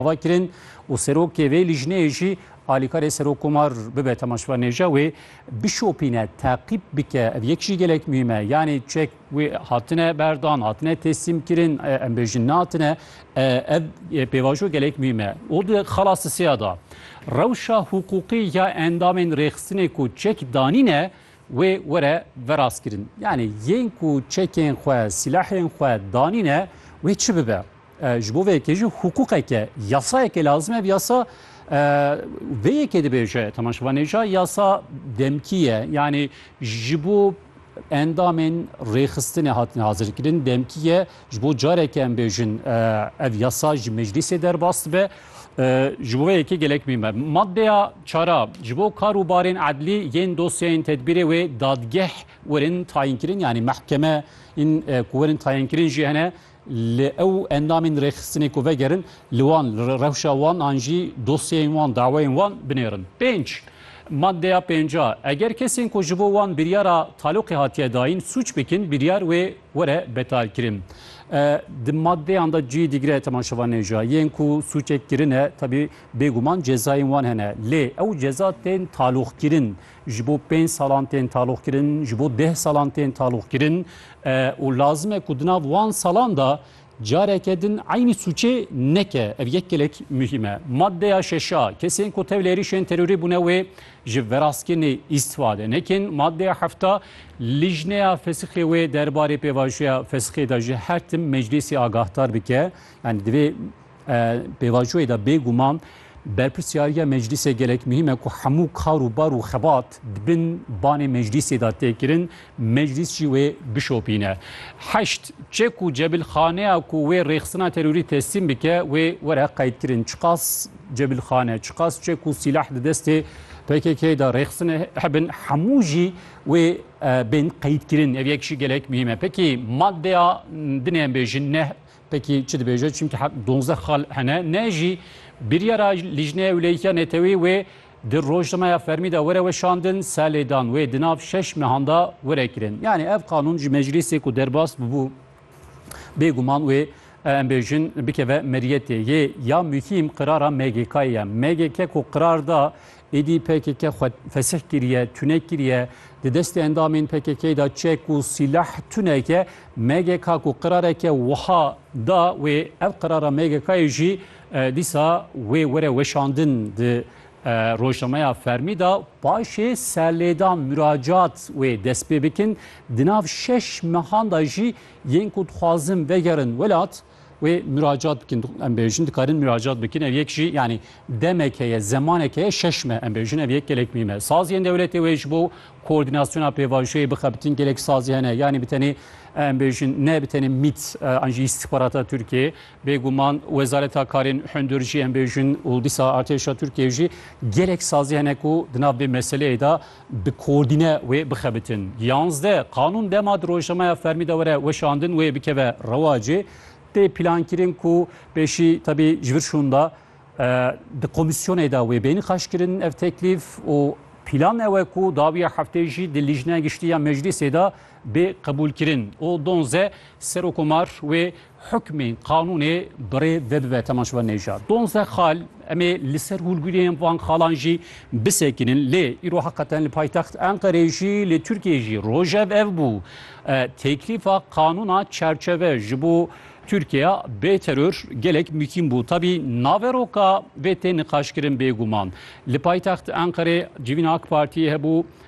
Ava kirin û serokê vê lîjneyê jî alîkarê Serokkomar bibe temaşvanêja wê bişopîne, teqîb bike. Ev yek jî gelek muhîm e. Yanî çek wê hatine berdan, hatine teslîmkirin, em bêjin nehatine. Ev pêvajo gelek muhîm e. Û di xala sisiya da rewşa hiqûqî ya endamên rêxistinê ku çek danîne wê were verastkirin. Yanî yên ku çekên xwe, sîlahên xwe danîne wê çi bibe? Ji bo vê yekê jî hiqûqeke, yasayeke lazim e. Ev yasa vê yekê dibêje Temel Şivanêja yasa demkî ye. Yanî ji bo endamên rêxistinê hatine hazirkirin demkî ye. Ji bo careke em bêjin ev yasa ji meclîsê derbas dibe. Ji bo vê yekê gelek mîm e. Maddeya çara ji bo kar û barên edlî yên dosyayên tedbîrê wê dadgeh werin tayînkirin yanî mehkeme in ku werin tayînkirin jî hene Li ew endamên rêxistinê ku vegerin, li wan, li rewşa wan an jî dosyeyên wan, daweyên wan binêrin. Pênc, Madeya pênca, Eger kesên ku ji bo wan biryara taloqê hatiye dayîn sûc bikin, biryar wê were betalkirin. Di madeyan de cihê dîgre temaşevan nêja. Yên ku sûcek kirine, tevî bêguman cezayên wan hene. Lê ew ceza tên taloqkirin. ji bo pênc salan tên taloqkirin, ji bo deh salan tên taloqkirin û lazim e ku di nav wan salan de careke din eynî sûcê neke. Ev yek gelek muhîm e. Maddeya şeş a, kesên ku tevlê êrîşên terorî bûne wê ji verastkirnê îstîfade nekin. Maddeya heft a, lijneya fesixê wê derbarê pêvajoya fesixê de ji her tim meclîsê agahdar bike. Yanî divê Pêvajoyê de bê guman berpirsyariya meclîsê gelek muhîm e ku hemû kar û bar û xebat di bin banê meclîsê de tê kirin, meclîs jî wê bişopîne. Heşt, Çê ku cebilxaneya ku wê rêxistina terorî teslîm bike wê were qeydkirin. Çiqas cebilxane, çiqas çê ku sîlah di destê pkk de rêxistin hebin hemû jî wê bên qeydkirin. Ev yek jî gelek muhîm e. Pekî maddeya dinê em bêjin neh Peki çi dibêje çimkî heq donzdeh xal hene ne jî biryara Lîjneya Ewleyîtiya Neteweyê wê di rojnameya fermî de were weşandin se lêdan wê di nav şeş mehan de were kirin. Yanî ev qanûn ji meclîsê ku derbas bûbû bêguman wê em bêjin bikeve meriyetê yê ya muhîm qirara MGK'ê ye. MGK ku qirar da Êdî pkk xwe fesih kiriye, tune kiriye, di destê endamên pkk'ê de çek û sîleh tuneke MGK ku qirareke wiha da wê ev qirara MGK'ê jî dîsa wê were weşandin di rojnameya fermî de paşê serlêdan muracat wê dest pê bikin di nav şeş mehan de jî yên ku dixwazin vegerin welat Wê miracat bikin em bêjin dikarin miracat bikin ev yek jî yanî demek heye zemanek heye şeş me em bêjin ev yek gelek mî me saziyên dewletê wê ji bo koordinasyona pêvajoyê bixebitin gelek sazî hene yanî bi tenê em bêjin ne bi tenê mît an jî îstixbarata Tirkiyê bêguman wezareta karên hundir jî em bêjin û dîsa artêşa Tirkiyê jî gelek sazî hene ku di nav vê meseleyê de bi kordîne wê bixebitin. Yanzdeh, Qanûn dema di rojnameya fermî de were weşandin wê bikeve rewacê, tê plankirin ku pêşî tevî ji vir şûnda di komîsyonê de wê bê nîqaşkirin ev teklîf û plan ew e ku dawiya heftê jî di Lîjneya Giştî ya Meclîsê de bê qebûlkirin û donzdeh, Serokomar wê Hukmên qanûnê bi rê vebive Temaşva Nejad. Donzdeh xal em ê li ser hûrgûriyên van xalan jî bisekinin. Lê îro heqeten li paytext Enqereyê jî li Tirkiyeyê jî rojev ev bû. Teklîfa qanûna çerçeve ji bo Tirkiya bê teror gelek mûkîm bû. Tevî naveroka vê tê niqaşkirin bêguman. Li paytext Enqerê civîna AK Partiyê hebû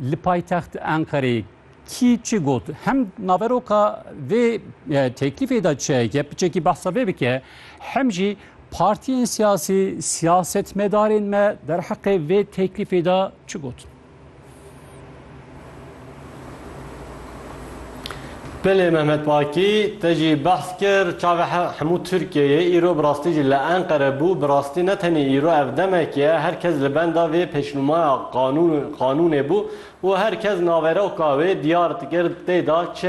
Li paytext Enqerê kî çi got? Hem naveroka vê teklîfê de çi ye? Piçekî behsa vê bike. Hem jî partiyên siyasî, siyasetmedarên me derheqê vê teklîfê de çi gotin? Belê Mehmet Baki te jî behs kir çavê hemû Tirkiyeyê îro bi rastî jî li Enqere bû, bi rastî ne tenê îro ev demek ye her kes li benda vê pêşnûmaya qanûnê bû û her kes naveroka wê diyar dikir tê de çi